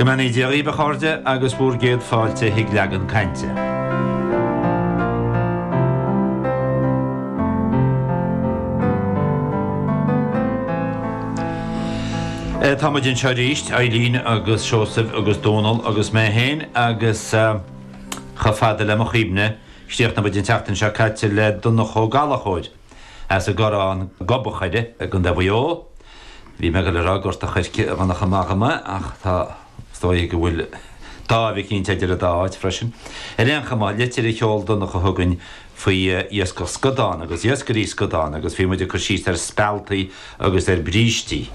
Go mbeannaí Dia dhaoib a chairde agus bhúr gcéad fáilte chuig Leagan Cainte. Tá muid anseo arís, Eilín agus Seosaimh agus Dónall agus mé féin agus chomh fada le mo chuimhne, chríochnaigh muid an tseachtain seo caite le Donncha Ó Gallchóir. As an gCorrán Gob an Choire i gContae Mhaigh Eo. Bhí mé ag goil a rá Gort a' Choirce a bhainfeadh amach mé ach tá is dóigh go bhfuil dáimh eicínt idir an dá áit freisin. Ar aon chuma, litir a sheol Donncha chugainn faoi iascach scadán agus iascairí scadán agus bhí muid ag cur síos ar spealtaí agus ar brístí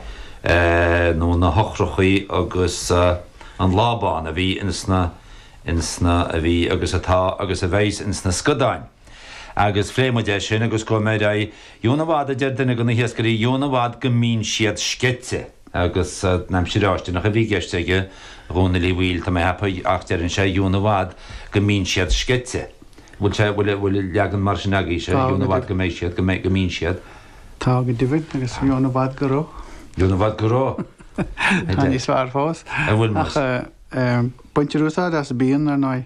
nó na heochrachaí agus an lábán a bhí ins na ins na a bhí agus atá agus a bheidh ins na scadáin. Agus phléigh muid é sin agus gabhfaidh muid ar aghaidh dheamhan i bhfad a deir duine de na hiascairí dheamhan i bhfad go mbíonn siad sceite. Agus an aimsir fháistineach a bhí i gceist aige a Dhónaill Uí Bhaoill, tá mé ag ceapadh ach deireann sé dheamhan i bhfad go mbíonn siad sceite. Bhfuil sé, bhfuil, bhfuil leagan mar sin agaibhse, Tá go deimhin. Dheamhan i bhfad go mbeidh siad, go mbeidh, go mbíonn siad? Tá go deimhin agus dheamhan i bhfad go raibh. Dheamhan i bhfad go raibh. Tá níos fearr fós. An bhfuil más? Ach baintear úsáid as bíonn ar ndóigh.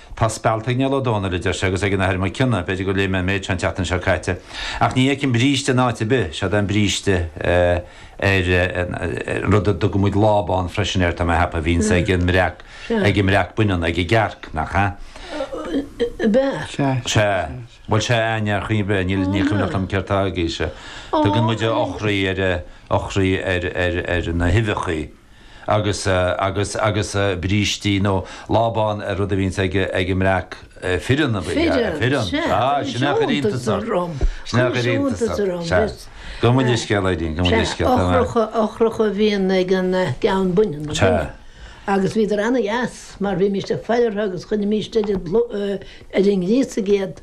Tá spealt ag Niall Ó Dónaill, a deir sé, agus ag an Athair Mac Cionnaith, b'fhéidir gur léigh mé an méid seo an tseachtain seo caite, ach ní fheicim bríste in áit ar bith, seod é an bríste ar an rud a dtugann muid lábán freisin air, tá mé ag ceapadh, a bhíonns ag an mbreac, ag an mbreac baineann, ag an gcearc, nach ea? Sea, bhuel sea, aye, níor chuimhin, bhuel níl, ní cuimhneach liom céard tá ag aois a, tugann muid eochraí ar, eochraí ar, ar, ar na huibheachaí. agus agus agus brístí nó lábán ar an rud a bhíonns ag ag an mbreac fireann a bhí a fireann sea sin é a chuir iontas orm sin é a chuir iontas orm sea gabh mo leithscéal a Eilín gabh mo leithscéal a Eilín sea eochraí eochraí a bhíonn ag an gceann baineann baineann sea agus bhíodar ana dheas mar bhímíst ag faire orthu agus chuirimíst iad ar an ngríosaigh iad.